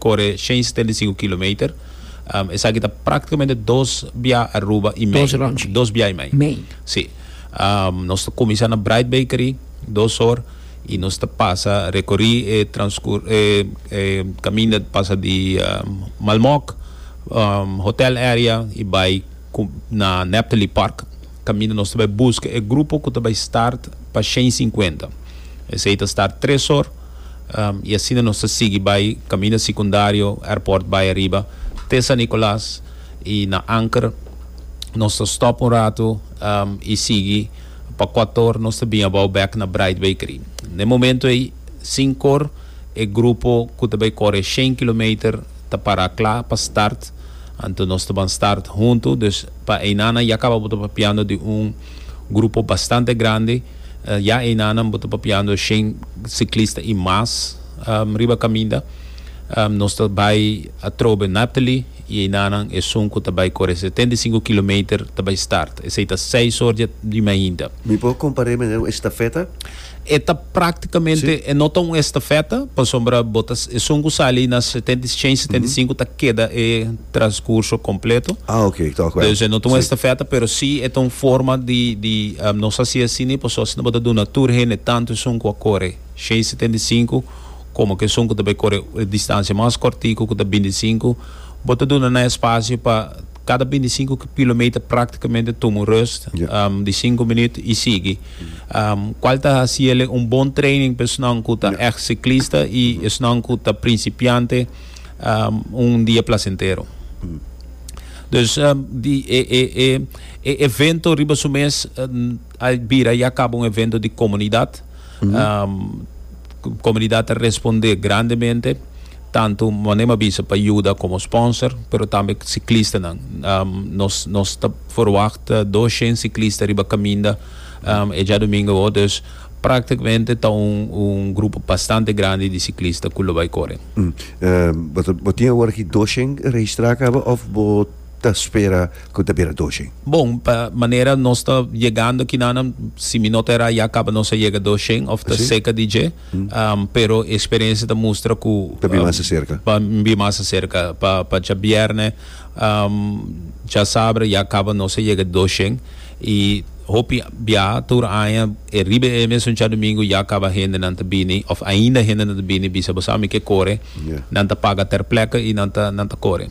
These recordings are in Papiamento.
Kore shen stenta i sinku kilometer. Esaki ta praktikamente dos bia Aruba i mei. Dos bia i mei. Si. Nos ta kuminsá na Bright Bakery, dos or, i nos ta pasa rekorí e e kaminda ta pasa di Malmok hotel area i bai na Neptali Park, kaminda nos ta bai buska e grupo ku ta bai start pa shen sinkuenta. Esei ta start tres or. y asina nos ta sigui bay caminda secundario airport bay ariba te San Nicolas y na Anker nos ta stop un rato y sigui pa cuator nos ta bin abao back na Bright Bakery na e momento ey sin cor e grupo cu ta bay core shen kilometer ta para cla pa start anto nos ta ban start hunto dus pa eyna'nan ya caba bo ta papiando di un Grupo bastante grandi, ya einanan bo ta papiando shen ciclista y mas riba caminda. Nos ta bay atrobe Naphtali y einanan esun cu ta bay core setenta y cinco kilometer ta bay start. Esey ta seis or di mainta. Mi por compare meneer un estafeta? E ta practicamente, e no ta un estafeta, pasobra bo ta, esun cu sali na setenta y, cien y setenta y cinco ta keda e transcurso completo. Ah, ok, ik ta acuerdo. Dus e no ta un Si. estafeta, pero si e ta un forma di, di, am, nos haci así ni paso asina bo ta duna tur hende, tanto esun cu a core cien y setenta y cinco, como cu esun cu ta bay core e distancia mas cortico, cu ta binticinco, bo ta duna nan espacio pa. Cada binti sinku kilometer practicamente tuma un rust di sinku minuut y sigui. Cual ta haciele un bon training pa esnan cu ta echt ciclista y esnan cu ta principiante un dia placentero. Dus di e evento riba su mes. A bira ya caba un evento di comunidad. Comunidad ta responde grandemente, tanto mane mi a bisa pa yuda como sponsor, pero tambe ciclistanan. Nos nos ta verwachta dos shen ciclista riba caminda e djadumingo awo, dus practicamente ta un un grupo bastante grandi di ciclista cu lo bay core. Bo tin awor aki dos shen registra caba of bo. ta spera cu ta bira doshen. Bon, pa manera nos ta yegando kinanan, si mi no ta era ya caba nos a yega doshen of ta seca di dje, pero e experiencia ta mustra cu Ta bin mas acerca. pa bin mas acerca, pa pa djabierne djasabra ya caba nos a yega doshen y hopi biaha tur aña e riba e mesun djadomingo ya caba hendenan ta bini of ainda hendenan ta bini bisa bo sa mi ke core, nan ta paga ter pleca y nan ta nan ta core.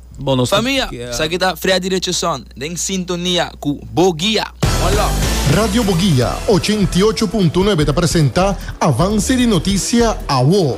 Bo no sabia? Esaki ta Freddy Richardson den sintonia cu Bo Guia. One love. Radio Boguia ochenta i ocho punto nuebe ta presenta Avance di Noticia Awo.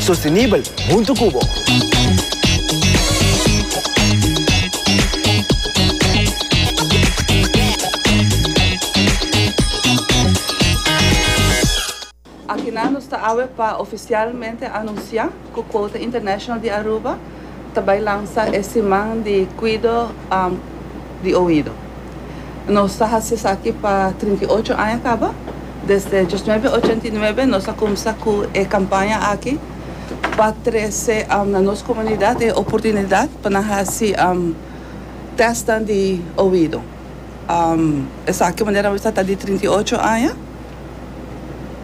sostenibel huntu ku bo. Akinan nos ta awe pa ofisialmente anunsiá ku Quota International di Aruba ta bai lansa e siman di cuido di oido. Nos ta haci esaki pa trinta i ocho aña caba. Desde diosnuebe ochenta i nuebe nos a cumsa cu e campaña aki pa trece na nos comunidad e oportunidad pa nan haci testnan di oido. Esaki manera nos a ta di trinta i ocho aña.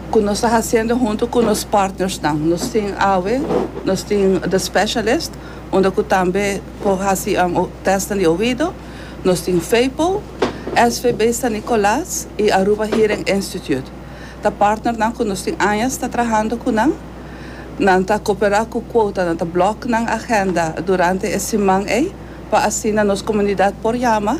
cu nos ta haciendo hunto cu nos partnersnan. Nos tin awe, nos tin The Specialist, unda cu tambe por haci testnan di oido. Nos tin Feypo, SVB San Nicolas y Aruba Hearing Institute. Ta partnernan cu nos tin añas ta trahando cu nan. Nan ta coopera cu quota, nan ta block nan agenda durante e siman ey pa asina nos comunidad por yama.